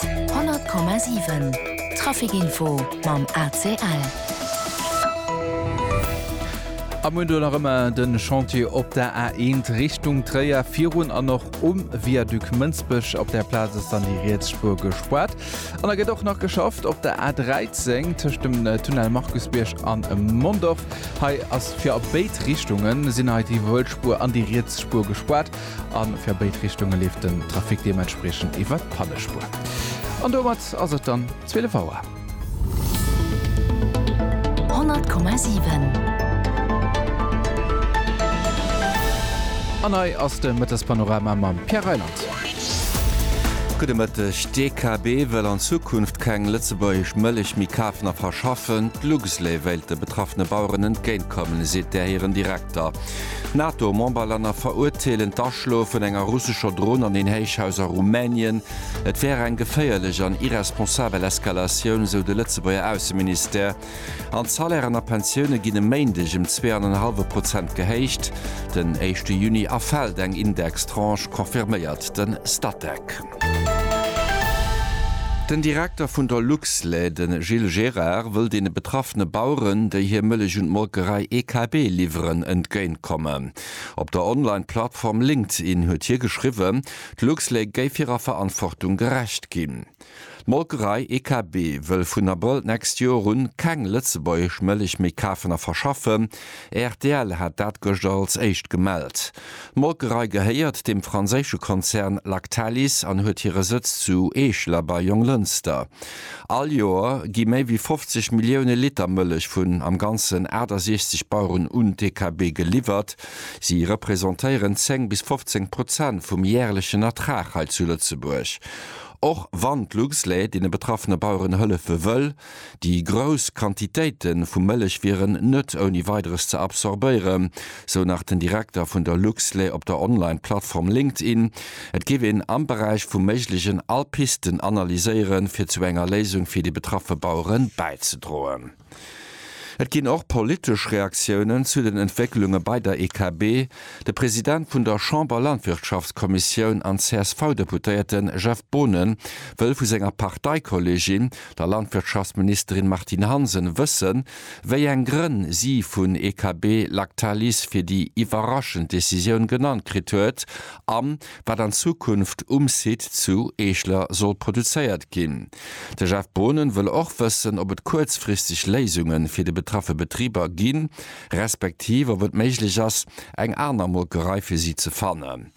100,7 Traficinfo mam ACL. Am Moment nach ëmmer de Chantier op der A1 Richtung Tréier virun an och um Viaduc Mënsbech. Op der Plaz ass dann déi riets Spuer gespaart. An da gëtt och nach geschafft op der A13 tëscht dem Tunnel Markusbierg an Mondorf. Hei ass fir a béid Richtungen sinn hei déi Wëllspuer an déi riets Spuer gespaart. a fir béid Richtunge leeft den Trafic deementspriechend iwwer d'Pannespur. An domat ass et dann 12 Auer. 100,7. An hei ass de Mëttespanorama mam Pierre Reyland. Gudde Mëtteg. D'DKB wëll an Zukunft keng lëtzebuergesch Mëllech méi kafen a verschaffen. D'Luxlait wéilt de betraffene Baueren entgéintkommen, seet där hiren Direkter. D'NATO-Memberlänner verurteelen d'Aschloe vun enger russescher Dron an een Héichhaus a Rumänien. Et wär eng geféierlech an irresponsabel Eskalatioun, esou de Lëtzebuerger Ausseministère. An d'Salairen a Pensioune ginn e Méindeg ëm zwee an en hallwe Prozent gehéicht. Den éischte Juni erfält eng Indextranche, confirméiert de Statec. Den Direkter vun der Luxlait, de Gilles Gérard, wëll deene betraffene Baueren, déi hir Mëllech un d'Molkerei EKB liwweren, entgéint kommen. Op der Online-Plattform LinkedIn huet hie geschriwwen, d'Luxlait géif hirer Verantwortung gerecht ginn. D'Molkerei EKB wëll vun Abrëll d'nächst Joer un keng lëtzebuergesch Mëllech méi kafen a verschaffen. Rtl hat dat gëschter als éischt gemellt. D'Molkerei gehéiert dem franséische Konzern Lactalis an huet hire Sëtz zu Eeschler bei Jonglënster. All Joer gi méi wéi 50 Millioune Liter Mëllech vun am Ganzen 68 Baueren un d'EKB geliwwert. Si representéieren 10 bis 15 Prozent vum järlechen Ertrag hei zu Lëtzebuerg. Och wann d'Luxlait deene betraffene Baueren hëllefe wëll, Déi grouss Quantitéite vu Mëllech wieren net ouni Weideres ze absorbéieren, sou nach den Direkter vun der Luxlait op der Online-Plattform LinkedIn. Et géif een am Beräich vu méiglegen all Pisten analyséieren, fir zu enger Léisung fir déi betraffe Bauere bäizedroen. Et ginn och politesch Reaktiounen zu den Entwécklunge bei der EKB. De President vun der Chamber-Landwirtschaftskommissioun an CSV-Deputéierte Jeff Boonen wëll vu senger Parteikolleegin der Landwirtschaftsministerin Martine Hansen wëssen, wéi eng Grënn si vun EKB Lactalis fir déi iwwerraschend Decisioun genannt kritt huet a wat an Zukunft um Site zu Eeschler soll produzéiert ginn. De Jeff Boonen wëll och wëssen, ob et kuerzfristeg Léisunge fir de betraffe Betriber gi respektiv ob et méiglech ass, eng aner Molkerei fir si ze fannen.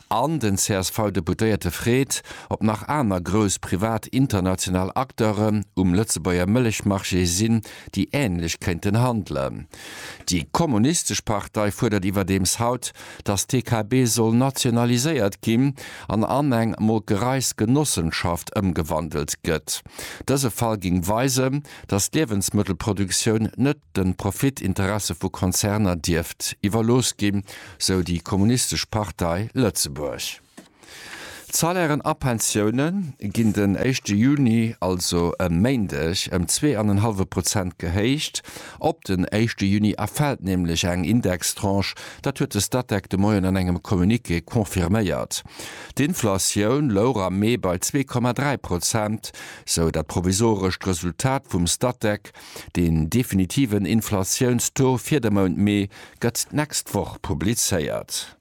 An den CSV-Deputéierte freet, ob nach aner grouss privat international Acteuren um Lëtzebuerger Mëllechmarché sinn, déi änlech kéinten handelen. Déi kommunistesch Partei fuerdert iwwerdeems haut, datt d'TKB soll nationaliséiert ginn an an eng Molkereisgenossenschaft ëmgewandelt gëtt. Dëse Fall géing weisen, datt d'Liewensmëttelproduktioun net. de Profitinteresse vu Konzerner dierft iwwerlooss ginn, sou déi Kommunistesch Partei Lëtzebuerg. D'Salairen a Pensioune ginn den éischte Juni, also e Méindeg, ëm zwee an en hallwe Prozent gehéicht. Op den éischte Juni erfält nämlech eng Indextranche, dat huet de Statec de Moien an engem Communiqué confirméiert. D'Inflatioun louch am Mee bei zwee Komma dräi Prozent, sou dat provisorescht Resultat vum Statec. Deen definitiven Inflatiounstaux fir de Mount Mee gëtt d'nächst Woch publizéiert.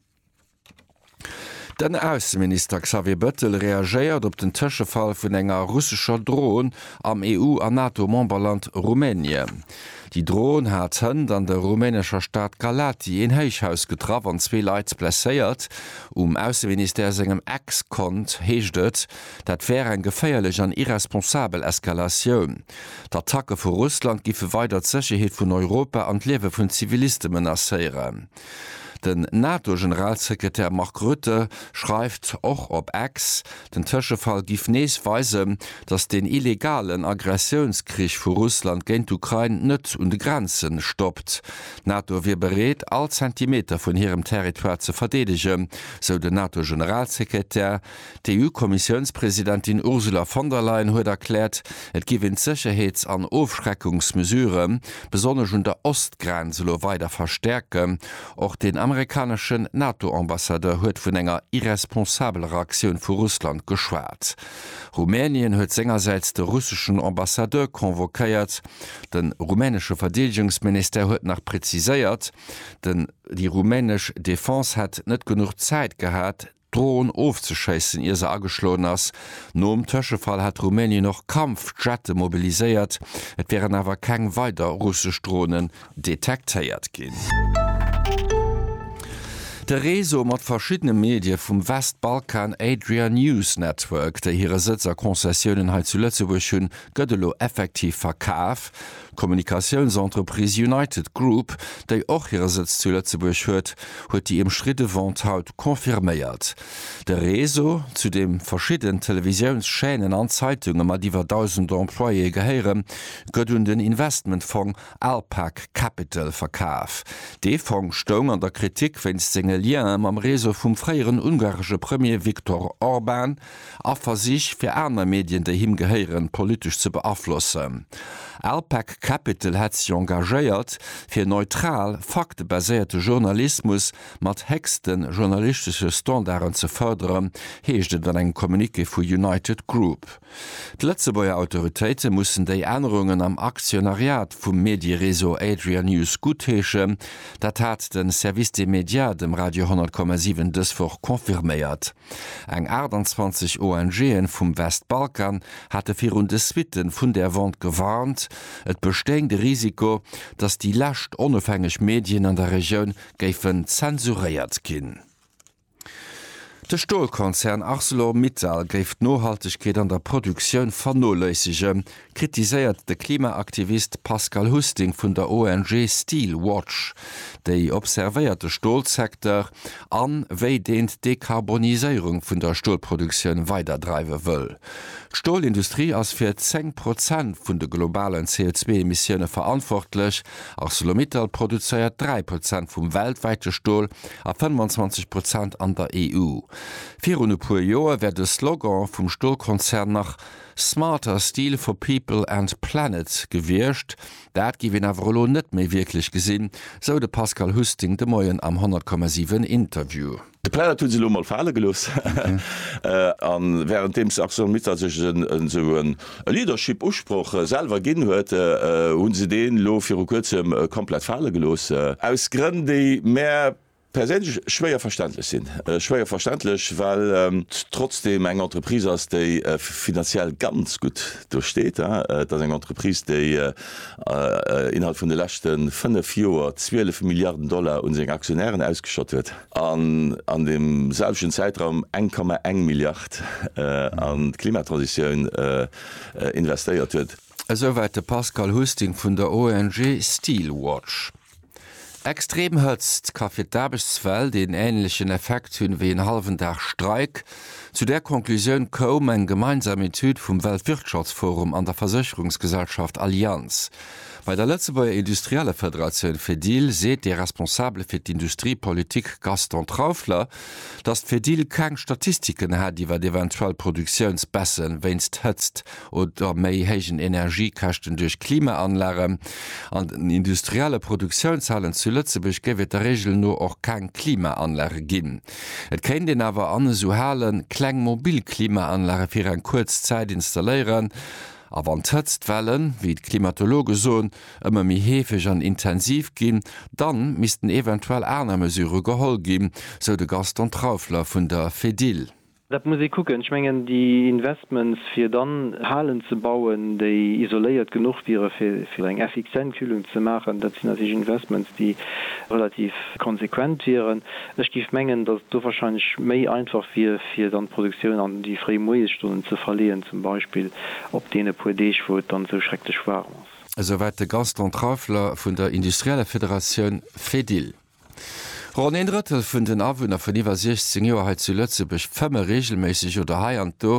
Den Ausseminister Xavier Bettel reagéiert op den Tëschefall vun enger russescher Dron am EU a NATO-Memberland Rumänien. Déi Dron hat hënt an der rumänescher Stad Galaţi een Héichhaus getraff an zwee Leit blesséiert. Um Ausseministère sengem Ex-Kont heescht et, Dat wär eng geféierlech an irresponsabel Eskalatioun. D'Attacke vu Russland géife weider d'Sécherheet vun Europa an d'Liewe vun Ziviliste menacéieren. Den NATO-Generalsekretär Mark Rutte schreift och op X, den Tëschefall giff nees weisen, datt den illegalen Aggressiounskrich vu Russland géint d'Ukrain net un de Grenze stoppt. D'NATO wier bereet, all Zentimeter vun hirem Territoire ze verdeedegen, sou den NATO-Generalsekretär. D'EU-Kommissiounspresidentin Ursula von der Leyen huet erkläert, et géif een d'Sécherheets an Ofschreckungsmesurë besonnesch un der Ostgrenz elo weider verstäerken. Och den amerikaneschen NATO-Ambassadeur huet vun enger irresponsabler Aktioun vu Russland geschwat. Rumänien huet sengersäits de russeschen Ambassadeur convoquéiert. De rumänesche Verdeedegungsministère huet nach preziséiert, déi rumänesch Defense hätt net genuch Zäit gehat, D'Dron ofzeschéissen, ier se ageschloen ass. Nom Tëschefall hätt Rumänien och Kampfjette mobiliséiert, et wieren awer keng weider russesch Dronen detektéiert ginn. De Réseau mat verschiddene Medie vum Westbalkan, Adria News Network, déi hire Sëtz a Konzessiounen hei zu Lëtzebuerg hunn, gëtt elo effektiv verkaf. D'Kommunikatiounsentreprise United Group, déi och hire Sëtz zu Lëtzebuerg huet, huet déi ëmstridde Vente haut confirméiert. De Réseau, zu deem verschidden Televisiounschaînen an Zeitunge mat iwwer 1.000 Employéë gehéieren, gëtt un den Investmentfong Alpag Capital verkaf. Dee Fong stoung an der Kritik wéinst senge Liene mam Réseau vum fréieren ungaresche Premier Viktor Orban, a Versich fir aner Medien déi him gehéieren politesch ze beaflossen. Alpec Capital hätt sech engagéiert fir neutral, faktebaséierte Journalismus mat héchste journalistesche Standarden ze fërderen, heescht et an engem Communiqué vu United Group. D'Lëtzebuerger Autoritéite mussen déi Ännerungen am Aktionariat vum Mediereseau Adria News guttheeschen. Dat hat de Service des Médias dem Radio 10,7 dës Woch confirméiert. Eng 28 ONG'en vum Westbalkan hate virun de Suitten vun där Wond gewarnt, et bestéing de Risiko, datt déi lescht onofhängeg Medien an der Regioun géifen zensuréiert ginn. De Stolkonzern Arcelor Mittal géif d'Nohaltegkeet an der Produktioun vernoléissegen, kritiséiert de Klimaaktivist Pascal Husting vun der ONG Steel Watch, déi observéiert de Stolsecteur an wéi deen d'Dekarboniséierung vun der Stolproduktioun weiderdreiwe wëll. D'Stolindustrie ass fir 10 Prozent vun de globalen CO2-Emissioune verantwortlech. Arcelor-Mittal produzéiert 3 Prozent vum weltwäite Stol a 25 Prozent an der EU. Virun e puer Joer wär de Slogan vum Stolkonzern nach Smarter Steel for People and Planet gewiescht. Dat géif een awer elo net méi wierklech gesinn, sou de Pascal Husting de Moien am 100,7 Interview. De Planet hu se elo mol fale gelooss a wärenddeems ArcelorMittal sech esou e Leadership-Usproch selwer ginn huet, hu se deen elo viru kuerzem komplett fale gelooss. Aus Grënn, déi mär perséinlech schwéier verständlech sinn, schwéier verständlech, well et trotzdeem eng Entreprise ass, déi finanziell ganz gutt do steet. Et ass eng Entreprise, déi innerhalb vun de leschte fënnef Joer 12 Milliarden Dollar un seng Aktionären ausgeschott huet an an deem selwechten Zäitraum eng Komma eng Milliard an d'Klimatransitioun investéiert huet. Esouwäit de Pascal Husting vun der ONG Steelwatch. Extrem Hëtzt ka fir d'Aarbechtswelt een änlechen Effekt hunn, ewéi en hallwen Dag Streik. Zu där Conclusioun koum eng gemeinsam Etüd vum Weltwirtschaftsforum an der Versécherungsgesellschaft Allianz. Bei der Lëtzebuerger Industriellefederatioun Fedil seet de Responsabele fir d'Industriepolitik Gaston Traufler, datt d'Fedil keng Statistiken hätt iwwer eventuell Produktiounsbaissen wéinst Hëtzt. oder méi héijen Energiekäschten duerch Klimaanlagen. An den industrielle Produktiounshallen zu Lëtzebuerg géif et der Reegel no och keng Klimaanlage ginn. Et kéint een awer an esou Hale kleng mobil Klimaanlage fir eng kuerz Zäit installéieren. A wann d'Hëtztwellen, wéi d'Klimatologe soen, ëmmer méi heefeg an intensiv ginn, da missten eventuell aner Mesure geholl ginn, sou de Gaston Traufler vun der Fedil. Dat muss ee kucken. Ech mengen, déi Investments, fir dann Halen ze bauen, déi isoléiert genuch wiere fir eng effizient Kühlung ze maachen, dat sinn natierlech Investments, déi relativ konsequent wieren. Ech géif mengen, datt et do warscheinlech méi einfach wier, fir dann d'Produktioun an déi fréi Moiesstonnen ze verleeën, zum Beispill op deene puer Deeg, wou et dann esou schrecklech waarm ass. Esouwäit de Gaston Trauffler vun der industrieller Federatioun Fedil. Ronn een Drëttel vun den Awunner vun iwwer 16 Joer hei zu Lëtzebuerg fëmme reegelméisseg oder hei an do.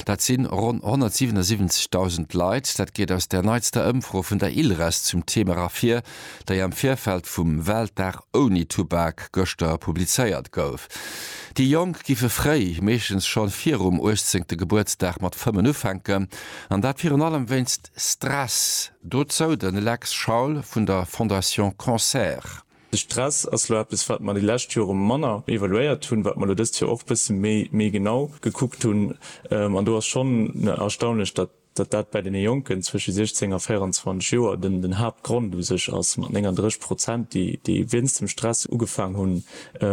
Dat si ronn 177.000 Leit. Dat geet aus der neitster Ëmfro vun der ILRES zum Thema ervir, déi am Virfeld vum Weltdag ouni Tubak gëschter publizéiert gouf. Déi Jonk giffe fréi, meeschtens schonn virum uechtzéngte Gebuertsdag, mat fëmmen ufänken. An dat virun allem wéinst. Stress, dozou de Lex Schaul vun der Fondation Cancer. De Stress ass elo eppes, wat mer déi lescht Jore manner evaluéiert hunn, wat mer elo dëst Joer och e bësse méi genau gekuckt hunn. An do ass schonn erstaunlech, datt dat bei deene Jonken zwësche 16 a 24 Joer den Haaptgrond u sech ass, mat 39 Prozent, déi wéinst dem Stress ugefaang hu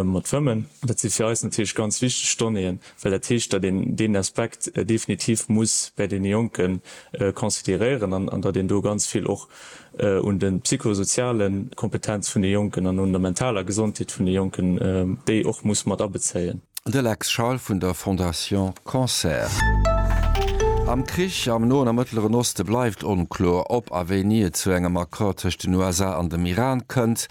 mat schwëmmen. Dat si fir eis natierlech ganz wichteg Donnéeën. well dat heescht, datt een deen Aspekt definitiv muss bäi deene Jonke consideréieren an datt een do ganz vill och un de psychosoziale Kompetenz vun de Jonken an un der mentaler Gesondheet vun de Jonken, déi och muss mat abezéien. De Lex Schal vun der Fondation Cancer. Am Krich am Noen a Mëttleren Oste bleift onkloer, ob a wéini et zu engem Accord tëscht den USA an dem Iran kënnt.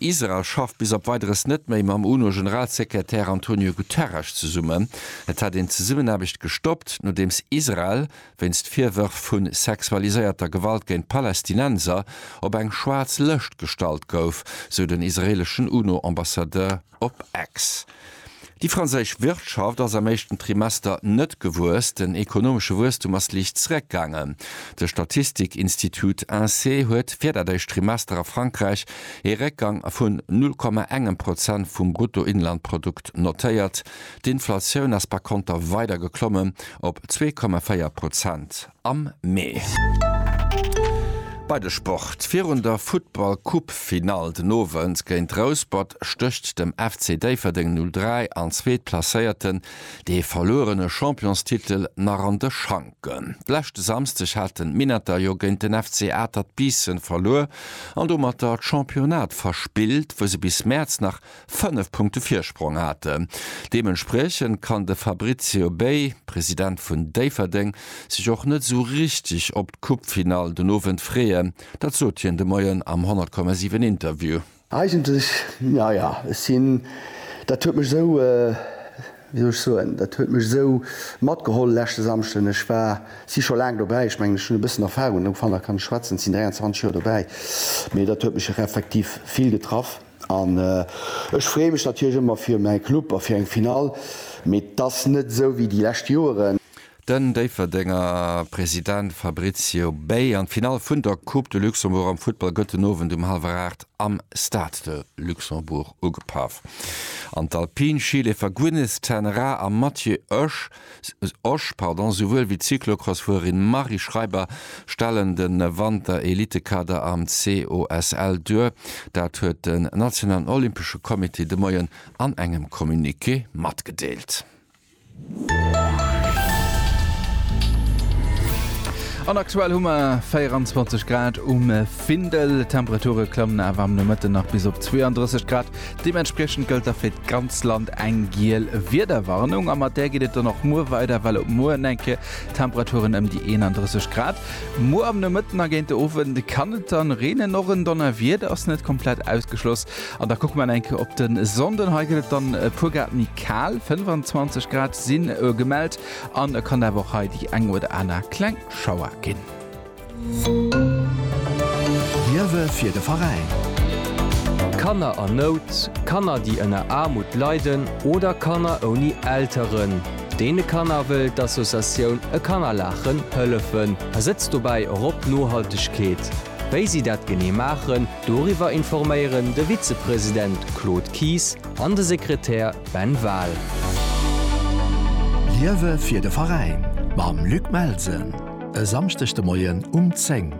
Israel schafft bis op Weideres net méi mam UNO-Generalsekretär Antonio Guterres zesummen. Et hätt een d'Zesummenaarbecht gestoppt, nodeems Israel wéinst Virwërf vu sexualiséierter Gewalt géint Palästinenser op eng schwaarz Lëscht gestallt gouf, sou den israeeleschen UNO-Ambassadeur. Op Ex. Déi franséisch Wirtschaft ass am éischten Trimester net gewuess. Den ekonomesche Wuesstum ass liicht zeréckgaangen. De Statistikinstitut Insee huet fir dat éischt Trimester a Frankräich ee Réckgang vun 0,1 Prozent vum Bruttoinlandprodukt notéiert. D'Inflatioun ass par konter weider geklommen op 2,4 Prozent. am Mee. Bei de Sport, Virun der Futtball Cup Finall den Owend géint Rouspert stécht dem FC Déifferdeng 03 an Zweetplacéierten dee verluerene Championstitel nach an de Schanken. D'leschte Samsdeg haten d'Minetter jo géint den FC Atert Biissen verluer an domatter d'Championnat verspillt wou se bis Mäerz nach fënnef Punkte Virsprong haten. Deementspriechend kann de Fabrizio Bey, President vun Déifferdeng, sech och net esou richteg op d'Coupefinall den Owend freeën. Dat sot hien de Moien am 100,7 Interview. Eigentlech, naja, ech sinn, dat huet mech esou, wéi soll ech soen, dat huet mech esou matgeholl leschte Samschden. Ech war, si scho laang dobäi, ech mengen, ech hunn e bëssen Erfarung, ufanner kann ech schwätzen, sinn 23 Joer dobäi, mee dat huet mech och effektiv vill getraff. An ech freeë mech natierlech ëmmer fir mäi Club a fir eng Finall, mee 't ass net esou wéi déi lescht Joeren. Den Déifferdenger President Fabrizio Bey an d'Finall vun der Coupe de Luxembourg am Futtball gëtt den Owend um hallwer 8 am Stade de Luxembourg ugepaff an d'Alpin-Skileefer Gwyneth ten Raa a Mathieu Oesch Osch, pardon, souwuel wéi d'Cyclocrossfuererin Marie Schreiber stellen de Wanter-Elitekader am COSL duer. Dat huet den nationalen Olympesche Comité de Moien an engem Communiqué matgedeelt. An aktuell hu mer 24 Grad um Findel. D'Temperature klammen awer am Nomëtten nach bis op 32 Grad. Deementspriechend gëllt da fir d'ganz Land eng giel Wiederwarnung a mat där geet et dann och muer weider, well op muer en enke Temperaturen ëm déi 31 Grad. Muer am Nomëtten a géint de Owend kann et dann reenen, och en Donnerwieder ass net komplett ausgeschloss. An da kucke mer en enke op de Sonnden, hei gëtt et dann e puer Grad méi kal, 25 Grad si gemellt an et kann awer och hei déi eng oder aner kleng Schauer ginn. Liewe fir de Veräin! Kanner an Nout, Kanner déi ënner Aarmut leiden oder Kanner ouni Elteren. Deene Kanner wëll d'Associatioun E Kanner laachen hëllefen a setzt dobäi och op Nohaltegkeet. Wéi si dat genee maachen, doriwwer informéieren de Vizepresident Claude Kies an de Sekretär Ben Wahl. Liewe fir de Veräin mam Luc Melsen! E Samschdeg de Moien um 10.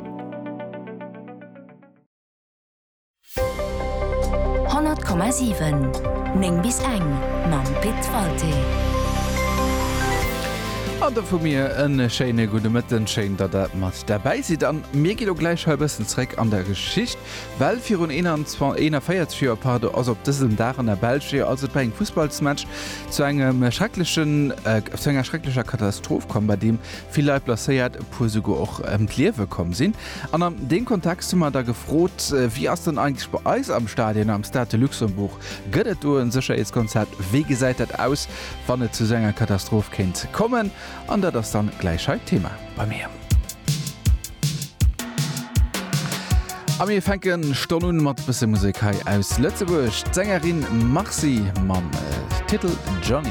100,7 9 bis eng mam Pit Walté. An do vu mir en schéine gudde Mëtten. Schéin, datt der mat derbäi sidd. An mir ginn elo gläich hei e bëssen zréck an der Geschicht, well virun 41 Joer, pardon, also op dësem Dag an der Belsch, jo, also et war eng Fussballsmatch, zu engem schrecklechen, zu enger schrecklecher Katastroph komm, bei deem vill Leit blesséiert, e puer souguer och ëm d'Liewe komm sinn. An an deem Kontext hu mer da gefrot, wéi ass dann eigentlech bei eis am Stadion, am Stade de Luxembourg, gëtt et do e Sécherheetskonzept, wéi gesäit dat aus, wann et zu esou enger Katastroph kéint kommen? An dat ass dann gläich hei d'Thema bei mir. A mir fänke stonn un mat e bësse Musek hei aus Lëtzebuerg, d'Sängerin Marcy mam Titel Johnny.